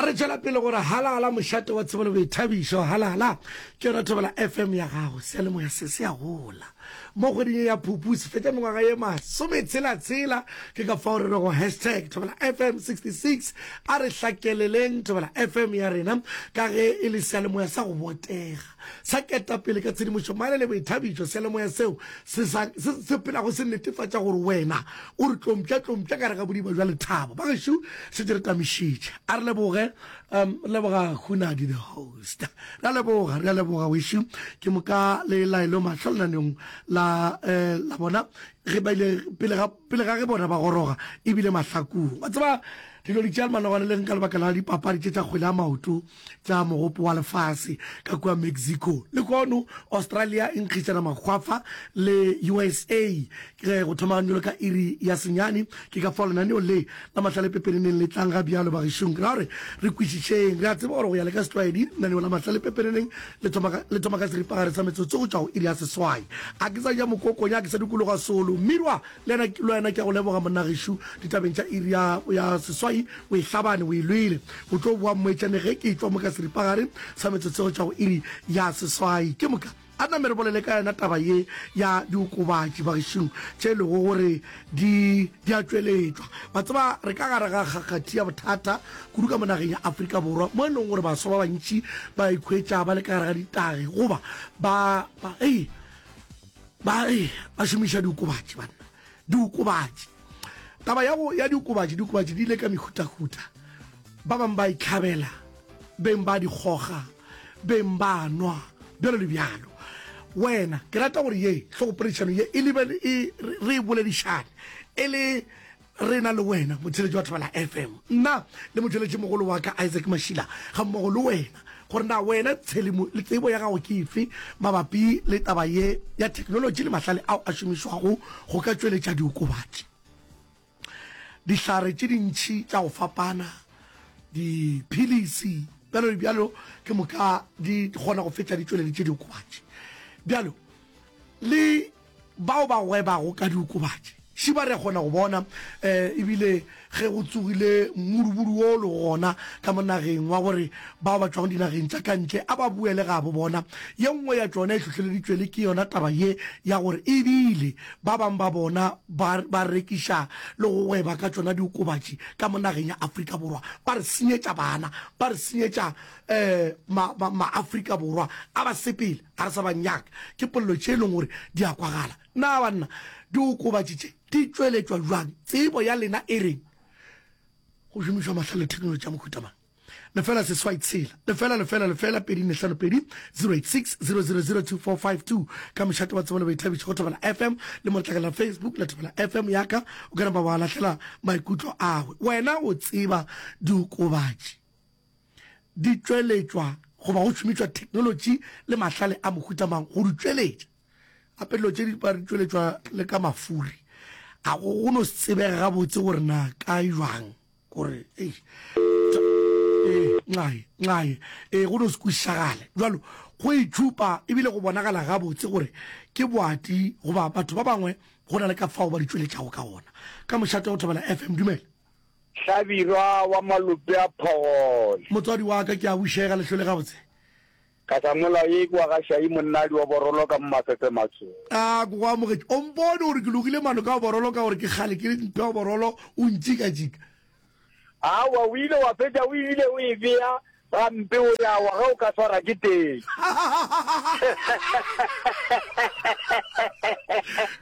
a re tšwela pele gore halala mošate wa tsebo le boithabišo halala ke yona thobela fm ya gago sealemoya se se a gola mo kgweding ya phupu se fetša mengwaga ye masome tshelatshela ke ka fao re rego hashtag thobela fm 66 a re hlakeleleng thobela fm ya rena ka ge e le sealemoya sa go botega Sa ketapele ka tshedimošo, mane le boithabišo, seyalemoya seo se sa, se, se phelago se netefatša gore wena o re tlompša-tlompša ka gare ga bodiba bja lethabo. Bagešu, se di re tamišitše. A re leboge, um, re leboga Hunadi the host. Re a leboga, re a leboga, wešu. Ke moka le laelo mahlo lenaneong la, eh, la bona, ge ba ile pele ga, pele ga ge bona ba goroga, e bile mahlakong. Wa tseba, dilo di tšea le manogwane le reng ka lebaka la dipapadi tše tša kgwele ya maoto. tla mogopo wa lefase ka kua Mexico. Lehono Australia e nkgišana makgwafa le usa ge go thomagane bjalo ka iri ya senyane. Ke ka fao lenaneo le la Mahlale Pepeneneng le tlang ga bjalo. Bagešong, ra re re kwešišeng. Re a tseba gore go ya le ka setlwaedi, lenaneo la Mahlale Pepeneneng le thoma ka, le thoma ka seripagare sa metsotso go tšwa go iri ya seswai. A ke sa ja mokoko, nya ke sa dikologa solo, Mmirwa! Le wena ke a go leboga, monna gešo. Ditabeng tša iri ya, ya seswai o e hlabane, o e lwele. O tlo boa, mmoetšane, ge ke etšwa mo ka seripagare sa metsotso e go tšwa go iri ya seswai. Ke moka a name re bolele ka yona taba ye ya diokobatši bagešong, tše e lego gore di, di a tšweletšwa. Wa tseba, re ka gare ga kgakgathi ya bothata kudu ka mo nageng ya Afrika Borwa, mo e lego gore baswa ba bantši ba ikhwetša ba le ka gare ga ditagi, goba ba, ba, hei, Ba re ba šomiša diokobatši, banna, diokobatši. Taba ya go ya diokobatši, diokobatši di ile ka mehutahuta. Ba bang ba itlhabela, beng ba di kgoga, beng ba nwa, bjalo le bjalo. Wena, ke rata gore ye hlogophedišano ye e lebele e re e boledišane e le Rena le wena motšheletši wa Thobela FM, nna le motšweletšimogolo wa ka Isaac Mashila gammogo le wena, gore na wena tšhelimo le tsebo ya gago ke efe mabapi le taba ye ya theknolotši le mahlale ao a šomišwago go ka tšweletša diokobatši, dihlare tše dintši tša go fapana, diphilisi, bjalo le bjalo, ke moka di kgona go fetša di tšweleditše diokobatši bjalo le. Bao ba gwebago ka diokobatši še ba re a kgona go bona, e bile ge go tsogile mmudubudu wo o lego gona ka mo nageng wa gore bao ba tšwago dinageng tša ka ntle a ba boele gabo bona, ye nngwe ya tšona e hlohleleditšwe le ke yona taba ye ya gore e bile ba bang ba bona ba ba rekiša le go gweba ka tšona diokobatši ka mo nageng ya Afrika Borwa. Ba re senyetša bana, ba re senyetša ma-Afrika Borwa a basepela. Ga re sa ba nyaka. Ke polelo tše e lego gore di a kwagala. Na banna, diokobatši tše di tšweletšwa bjang? Tsebo ya lena e reng? Go šomišwa mahlale le theknolotši ya mohuta mang? lefela seswai tshela lefela lefela lefela pedi nne hlano pedi 086 0002452 ka mošate wa tsebo le boithabišo go thobela fm le mo letlakala la facebook la thobela fm yaka o ka napa wa lahlela maikutlo agwe wena o tseba diokobatši di tšweletšwa goba go šomišwa theknolotši le mahlale a mohuta mang go di tšweletša. Gape dilo tše di ba di tšweletšwa le ka mafuri. Ga go go no se tsebege gabotse gore na kae bjang gore ee nxae nxae ee go no se kwešišagale jalo go itšhupa ebile go bonagala gabotse gore ke boati goba batho ba bangwe go na le ka fao ba di tšweletšago ka gona ka mošate go thobela FM dumela Hlabirwa wa malope a phogole. Motswadi wa ka, ke a bušega, lehlole gabotse. Katamolao ye e kwa ga Šai monnadi wa Borolo ka mo Mafefe Matsho. A, ke go amogetše. O mpone gore ke logile mano ka go Borolo ka gore ke kgale ke mphe go Borolo, o ntšikatšika. Aowa, o ile wa fetša o ebile o e bea Gampe o ya wa ge o ka swara ke teng.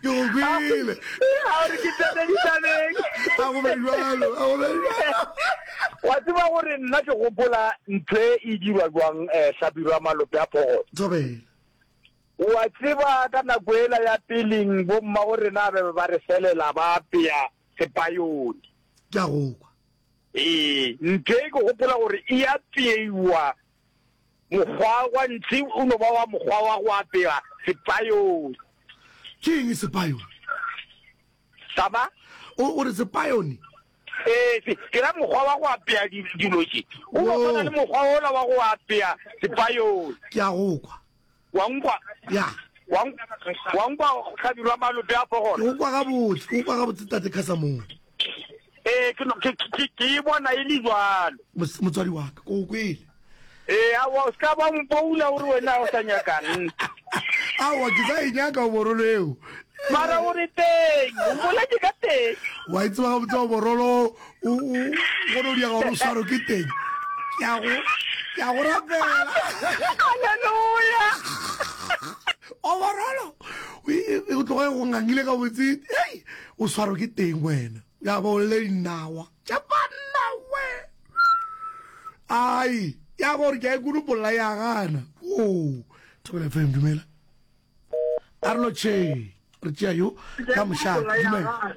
Ke go kwele. A re ke tsene ditabeng. A go be jwalo, a go be jwalo. Wa tseba gore nna ke gopola ntho e e dirwa jwang eh Hlabirwa malope a phogolo. Thobela. Wa tseba ka nako ela ya peling bo mma go rena ba be ba re felela ba apea sepayoni. Ke a go kwa. Ee, ntee ke gopola gore e apeiwa mokgwa wa ntsi o no ba wa mokgwa wa go apewa sepayone. Ke eng sepayone? Saba? O, o re sepayone? Ee, se, ke ra mokgwa wa go apea di- dilo tše. O no Wo. tshwana le mokgwa ola wa go apea sepayone. Ke a go kwa. Wa nkwa? Ya. Wa nkwa, wa nkwa go hlabirwa malope a pogolo? Ke go kwa gabotse, ke go kwa gabotse Tate Casamore. Ee, ke no- ke- ke- ke- ke e bona e le jalo. Mos- Motswadi wa ka, ke go kwele. Ee, aowa, o se ka ba mpoula o re wena o sa nyakang. Aowa, ke sa e nyaka oborolo eo. Mara o re teng, o boletše ka teng. Wa e tseba gabotse oborolo o o gone o diega gore o swaro ke teng ke a go ke a go rapela haleluya overolo o tloga go ngangile ka botse ei o swaro ke teng wena ya bo le dinawa tša banna we ai ya gore ke a ikulu polla ya gana o thobele fm dumela arlo che re tšea yo ka mošate dumela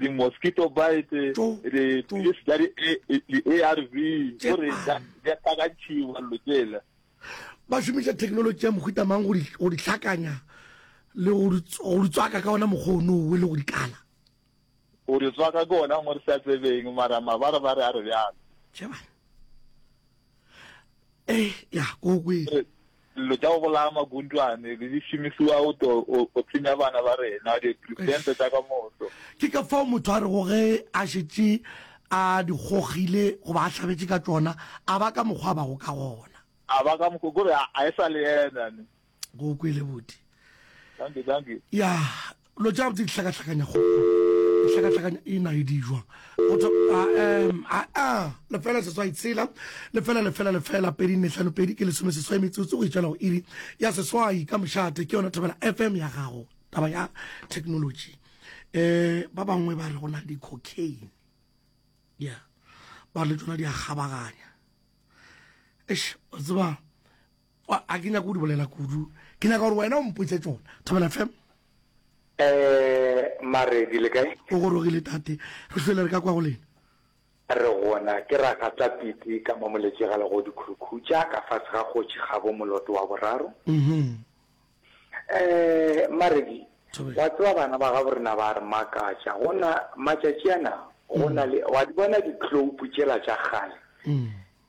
di-mosquito bite dipilisi tša di-a r v gore di hlakantšhiwa lo tsela ba šomiša thekenoloji ya mohuta mang go di hlakanya le go di tswaka ka ona mokgwa o nowe le go di kala go di tswaka ke ona ngwe re sa tsebeng mara mabare ba re a re bjalo ee ya ko kwele Dilo tša go bolaya magundwane le di šomišiwa go to go tsenya bana ba rena diperesente tša ka moso. Ke ka fao motho a rego ge a šetše a di gogile goba a hlabetše ka tšona, a ba ka mokgwa a bago ka gona. A ba ka mokgwa kore a e sa le yena ne. Go kwele boti. Dankie, dankie. Ya, Lo tša di hlakahlakanya go di hlakahlakanya e na e di jwa go tso a em a a lefela seswai tshela lefela lefela lefela pedi nne hlano pedi ke lesome seswai metsotso go itšwela go iri ya seswai ka mošate ke yona thobela fm ya gago taba ya technology eh ba bangwe ba re go na le di-cocaine ya ba le tsona di a kgabaganya eish o tseba Wa, ga ke nyake go di bolela kudu. Ke nyaka gore wena o mpotše tšona. Thobela fm. Eeh, mare di le kae? O gorogile tate. Re hlwele re ka kwa go lena. Re gona, ke Ragata Piti ka mo Moletše ga Legodi Khurukhutša, ka fase ga Kgotši Kgabo moloto wa boraro. Uhum. Eeh, Maredi, Thobela. wa tseba bana ba gabo rena ba a re makatša. Go na, matšatši ana, go na le, wa di bona dikloupu tšela tša kgale? Uhum.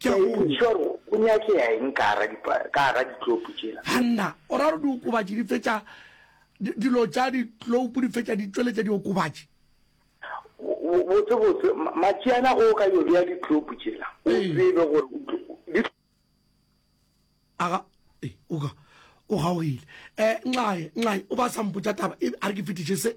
Ke a go. Ntšhwa go, go nyakea eng ka gara dipa, ka gara ditlopo tšela? Hanna, o ra gore diokobatši di fetša, di, dilo tša ditloupo di fetša di tšweletša diokobatši. Bo, botsebotse, ma, matšiana ge o ka yo bea ditlopo tšela, o Ee. tsebe gore o tlo, di, Aga, ee, o ka, o gaogile. Eh, Nxae, Nxae, o ba sa mpotša taba, e, a re ke fetiše se.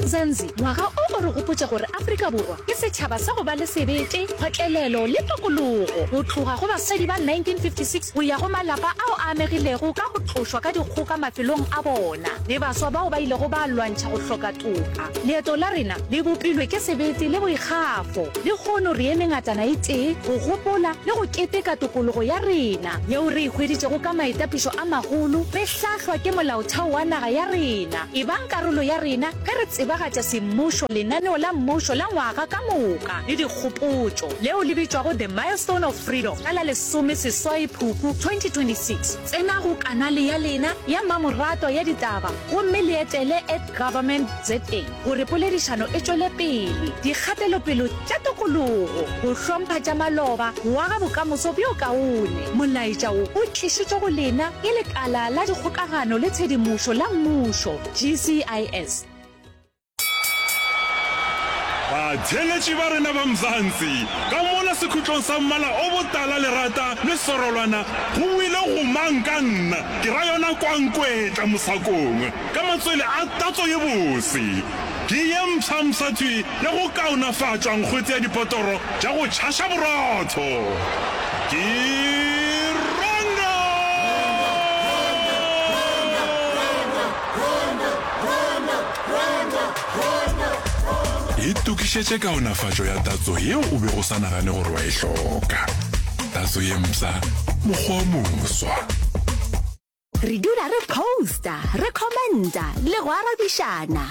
Nzanzi, ngwaga o o re gopotša gore Afrika Borwa ke setšhaba sa go ba le sebete, kgotlelelo le tokologo. Go tloga go basadi ba 1956 go ya go malapa ao a amegilego ka go tlošwa ka dikgoka mafelong a bona le baswa bao ba ilego ba lwantšha go hloka toka, leeto la rena le bopilwe ke sebete le boikgafo. Lehono re eme ngatana e tee go gopola le go keteka tokologo ya rena yeo re e hweditšego ka maitapišo a magolo re hlahlwa ke Molaotheo wa naga ya rena. Ebang karolo ya rena ge re tsebagatša semmušo, lenaneo la mmušo la ngwaga ka moka le dikgopotšo leo le bitšwago The Milestone of Freedom ka la lesome seswai Phupu 2026. Tsena go kanale ya lena ya mmamoratwa ya ditaba gomme le etele at Government ZA gore poledišano e tšwele pele. Dikgatelopele tša tokologo, go hlompha tša maloba, go aga bokamoso bjo kaone. Molaetša wo o tlišitšwe go lena ke Lekala la Dikgokagano le Tshedimošo la Mmušo, GCIS. Batheeletši ba rena ba Mzansi, ka mola sekhutlong sa mmala o botala lerata le sorolwana, go buile go mang ka nna, ke ra yona Kwankwetla Mosakongwe, ka matswele a tatso ye bose. Ke ye mfsa-mfsa tswi ya go kaonafatšwa nkgwetse ya dipotoro tša go tšhaša borotho. Ke Rongo! Itokišetše kaonafatšo ya tatso yeo o bego o sa nagane gore wa e hloka. Tatso ye mpsha, mokgwa o moswa. Re dula re posta, re commenta le go arabišana.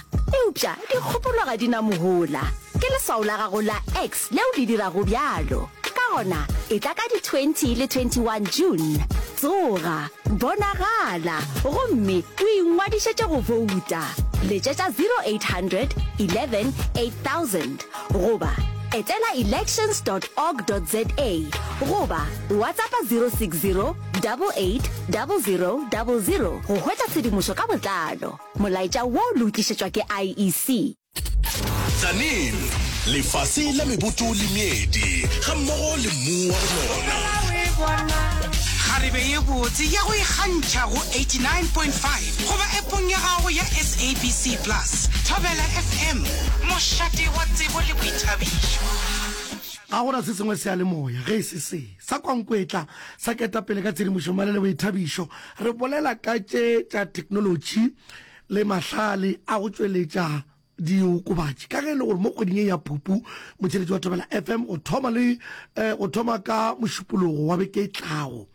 Eupša dikgopolo ga di na mohola. Ke leswao la gago la X leo le dirago bjalo. Ka gona, etla ka di 20 le 21 June. Tsoga, bonagala, gomme o ingwadišetše go bouta. Letšetša 0800 11 8000 goba etela elections dot org dot za goba WhatsAppa 060 880000 go hwetša tshedimošo ka botlalo. Molaetša wo le o tlišetšwa ke IEC. Tzaneen, lefase la meboto le meedi ga mmogo le mmu wa go nona. Kgarebe ye botse ya go ikgantšha go 89.5 goba epong ya gago ya SABC Plus. Thobela FM, mošate wa tsebo le boithabišo. Ga go na se sengwe seyalemoya ge e se se. Sa Kwankwetla sa Ketapele ka Tshedimošomale le Boithabišo, re bolela ka tše tša theknolotši le mahlale a go tšweletša diokobatši. Ka ge e le gore mo kgweding ye ya Phupu motšheletši wa Thobela FM go thoma le go thoma ka Mošupologo wa beke e tlago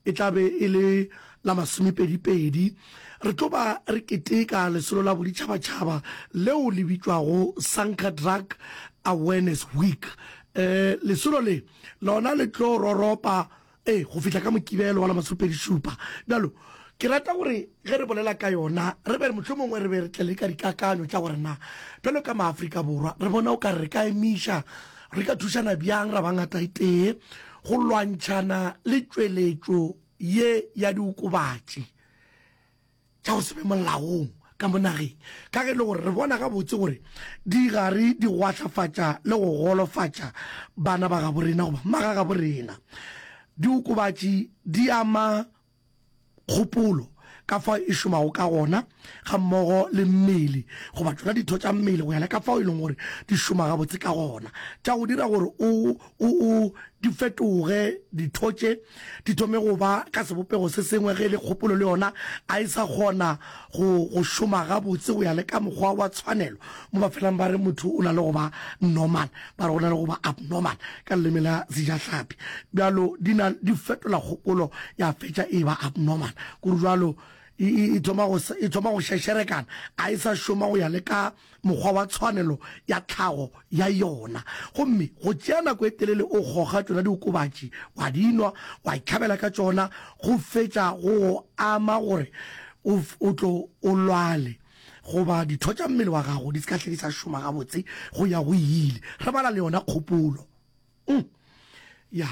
e tla be e le la masomepedipedi, re tlo ba re keteka lesolo la boditšhabatšhaba leo le bitšwago Sanka Drug Awareness Week. Lesolo le Lona le tlo roropa, ee, go fihla ka Mokibelo wa la masopedi-šupa. Bjalo, ke rata gore ge re bolela ka yona, re be mohlomongwe re be re tle le ka dikakanyo tša gore na, bjalo ka Maafrika Borwa, re bona o ka re re ka emiša, re ka thušana bjang ra ba ngataetee go lwantšhana le tšweletšo ye ya diokobatši. tša go se be molaong ka mo nageng, ka ge e le gore re bona gabotse gore di gare di gwahlafatša le go golofatša bana ba gabo rena goba magagabo rena. Diokobatši di ama kgopolo ka fao e šomago ka gona ga mmogo le mmele goba tšona ditho tša mmele go ya le ka fao e leng gore di šoma gabotse ka gona tša go dira gore o o o di fetoge ditho tše di thome go ba ka sebopego se sengwe ge e le kgopolo le yona a e sa kgona go go šoma gabotse go ya le ka mokgwa wa tshwanelo mo ba felang ba re motho o na le go ba normal ba re go na le go ba abnormal ka leleme la sejahlapi bjalo di na di fetola kgopolo ya fetša e ba abnormal kore bjalo e thoma go šešerekana a e sa šoma go ya le ka mokgwa wa tshwanelo ya tlhago ya yona, gomme go tšea nako e telele o goga tšona diokobatši, wa di nwa, wa itlhabela ka tšona, go fetša go go ama gore o, o tlo o lwale goba ditho tša mmele wa gago di se ka hle di sa šoma gabotse, go ya go ile. Re bala le yona kgopolo. Um. Ya.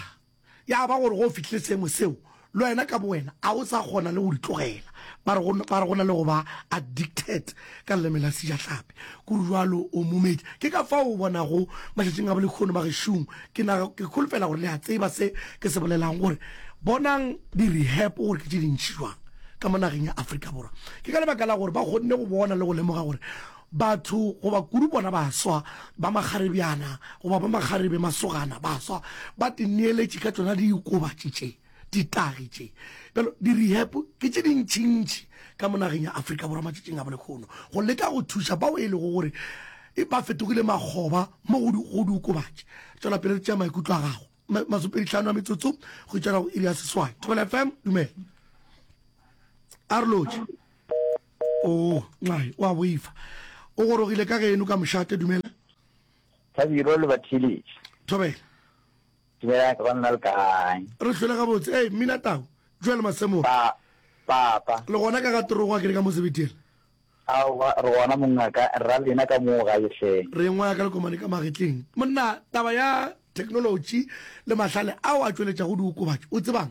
Ya ba gore ge o fihlile seemo seo, le wena ka bowena a o sa kgona le go di tlogela. Ba re go, ba re go na le go ba addicted, ka leleme la Sejahlapi. Go rjalo, o momedi. Ke ka fao o bonago matšatšing a bolehono ba gešong. Ke na, ke holofela gore le a tseba se ke se bolelago, gore bonang di-rehab gore ke tše dintši jwang ka mo nageng ya Afrika Borwa. Ke ka lebaka la gore ba kgonne go bona le go lemoga gore Batho, goba kudu bona baswa ba makgarebjana, goba ba makgarebe, masogana, baswa, ba tineeletše ka tšona diokobatši tše, ditagi tše. Bjalo, di-rehab ke tše dintšintši ka mo nageng ya Afrika Borwa matšatšing a bolekgono, go leka go thuša bao e lego gore ba fetogile makgoba mo go diokobatši. Tšwela pele re tšea maikutlo a gago. Masomepedi-hlano a metsotso go itšana go iri ya seswai. Thobela FM, dumela. A re lotšhe. O, nxai, o a boifa. O gorogile ka geno ka mošate, dumela. Thabiro, le ba theeletše. Thobela. Dumelang, ka banna le kae? Re hlwele gabotse. Ee, Mmina Tau. Joel Masemola. Pa, papa. Le gona ka ga terogo a kere ka mo sebetela? Aowa, re gona mongaka, rra lena ka moo gae hle. Re engwa ka lekomane ka magetleng. Monna, taba ya theknolotši le mahlale ao a tšweletšago diokobatši, o tseba'ng?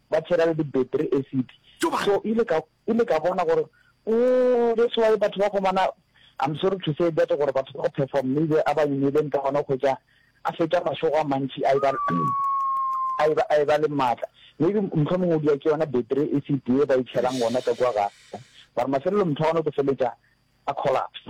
ba tshela le di-battery acid Tjo bana. so ile ka ile ka bona gore ooh that's why batho ba gomana I'm sorry to say that gore batho ba go perform maybe a ba imileng ka gona go ja a fetša mašogo a mantši a e ba a e ba a e ba le matla maybe mtlho mongwe o dira ke yona battery acid e ba e tshelang gona ka kwa ga ba re mafelelo motho wa gona o tlo feletša a collapse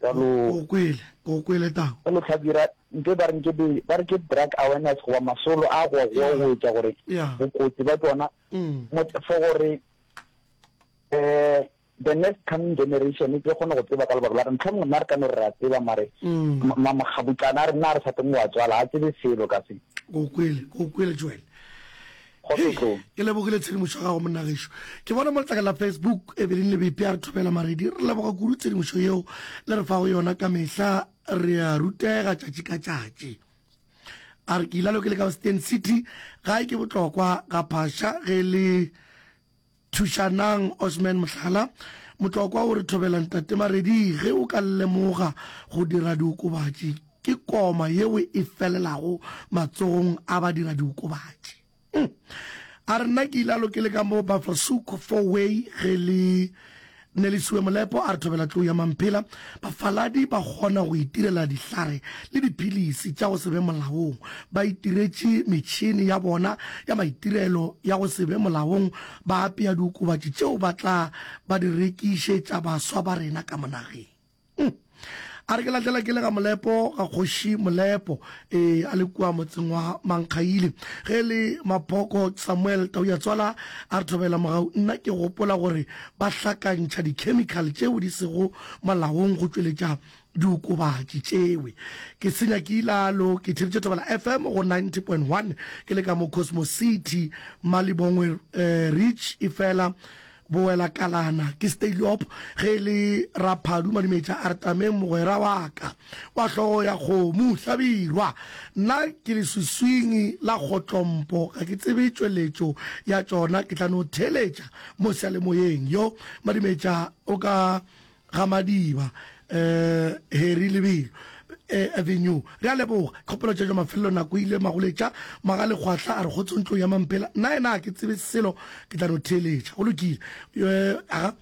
ka no o kwele o kwele tang ka no tlhabira nte ba re nke be ba re ke drug awareness go ba masolo a go go go etsa gore bokotsi ba tsona mm. mo for gore eh the next coming generation e tlo kgona go tseba ka lebaka la re ntlha mongwe nna re ka no re ra tseba mare mm. mamaxabutlana a re nna re sa teng wa tswala a tsebe selo ka se o kwele o kwele joel Kgotso tlong. Ke lebogile tshedimošo ya gago monna gešo. Ke bona mo letlakeng la Facebook Evelyn Lebepi a re thobela maredi. Re leboga kudu tshedimošo yeo le re fago yona ka mehla, re a rutega tšatši ka tšatši. A re ke ilalo ke le ka Western City, gae ke botlokwa ga phasha ge le Thušanang Osman Mohlala, Motlokwa o re thobela Ntate Maredi ge o ka lemoga go dira diokobatši ke koma yeo e felelago matsogong a badiradiokobatši. A re, Nna ke ile a lokele ka mo Buffelshoek four way ge le Nelisiwe Molepo a re thobela tlou ya Mamphela, bafaladi ba kgona go itirela dihlare le diphilisi tša go se be molaong. Ba itiretše metšhene ya bona ya maitirelo ya go se be molaong ba apea diokobatši tšeo ba tla ba di rekišetša baswa ba rena ka mo nageng. Uhm. A re ke lahlela ke le ga Molepo, ga kgoši Molepo, ee, a le kua motseng wa Mankgaile. Ge e le Maphoko, Samuel Tauyatswala a re thobela mogau, nna ke gopola gore ba hlakantšha dikhemikhale tšeo di sego molaong go tšweletša diokobatši tšewe. Ke senya ke ilalo, ke theeditše Thobela FM go 90.1 ke le ka mo Cosmos City, Malibongwe Ridge, efela Bowelakalana ke Steylop ge e le Raphadu Madimetša a re Tameng mogwera wa ka wa hlogo ya kgomo Hlabirwa nna ke leswiswing la kgotlompo ga ke tsebe tšweletšo ya tšona ke tla no theeletša mo seyalemoyeng yo Madimetša o ka Ga Madiba, eh, Harry Lebelo, eh, Avenue. Re a leboga. Kgopelo tša tša mafelelo nako e ile Magoletša, Magalegwahla a re kgotso ntlong ya Mampela. Nna yena ga ke tsebe selo, ke tla no theeletša. Go lokile. Eh, aga.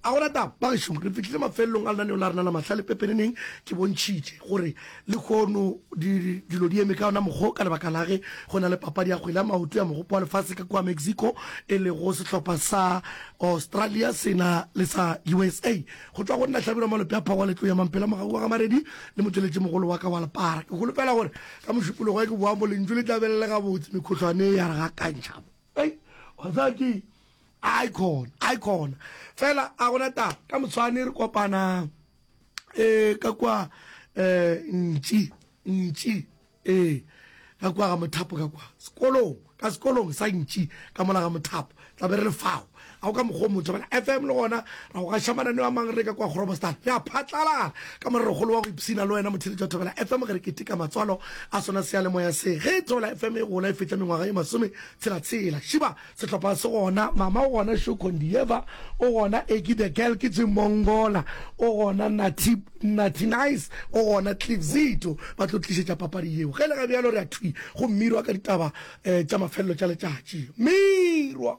A go na taba, bagešong. Re fihlile mafelelong a lenaneo la rena la Mahlale. Pepeneneng ke bontšhitše gore Lehono dilo di eme ka ona mokgwa o ka lebaka la ge go na le papadi ya kgwele ya maoto ya Mogopo wa Lefase ka kua Mexico e lego sehlopha sa Australia se na le sa usa. Go tšwa go nna Hlabirwa Malope a Phawa Letloya Mampela Mogau wa Gamaredi le motšweletšimogolo wa ka wa Lepara, ke holofela gore ka mošupologo ge ke boa mo lentšu le tla be le le gabotse, mekhohlwane ya re gakantšha mo. Hei, wa tseba keng, a e khona, a e khona, fela a gona taba, ka moswane re kopanang. eh ka kwa eh ntši ntši eh ka kwa ga mothapo ka kwa sekolong ka sekolong sa ntši ka mola ga mothapo tla be re le fao ga o ka mokgwa o motho bana fm le gona ra go gaša mananeo a mang re ka kwa gorobostan re a phatlalara ka morerogolo wa go ipshina le wena motheletši wa thobela fm ge re keteka matswalo a sona seyalemoya se ge thobela fm e gola e fetša mengwaga ye masome tshelatshela šiba Sehlopha se gona, Mama o gona, Sho Kondieva o gona, Eki the Girl ke Jim Mongola o gona, Natty, Natty Nice o gona, Cliff Zito ba tlo tlišetša papadi yeo. Ge le ga bjalo re a thwi go mmirwa ka ditaba tša mafelelo tša letšatši. Mmirwa!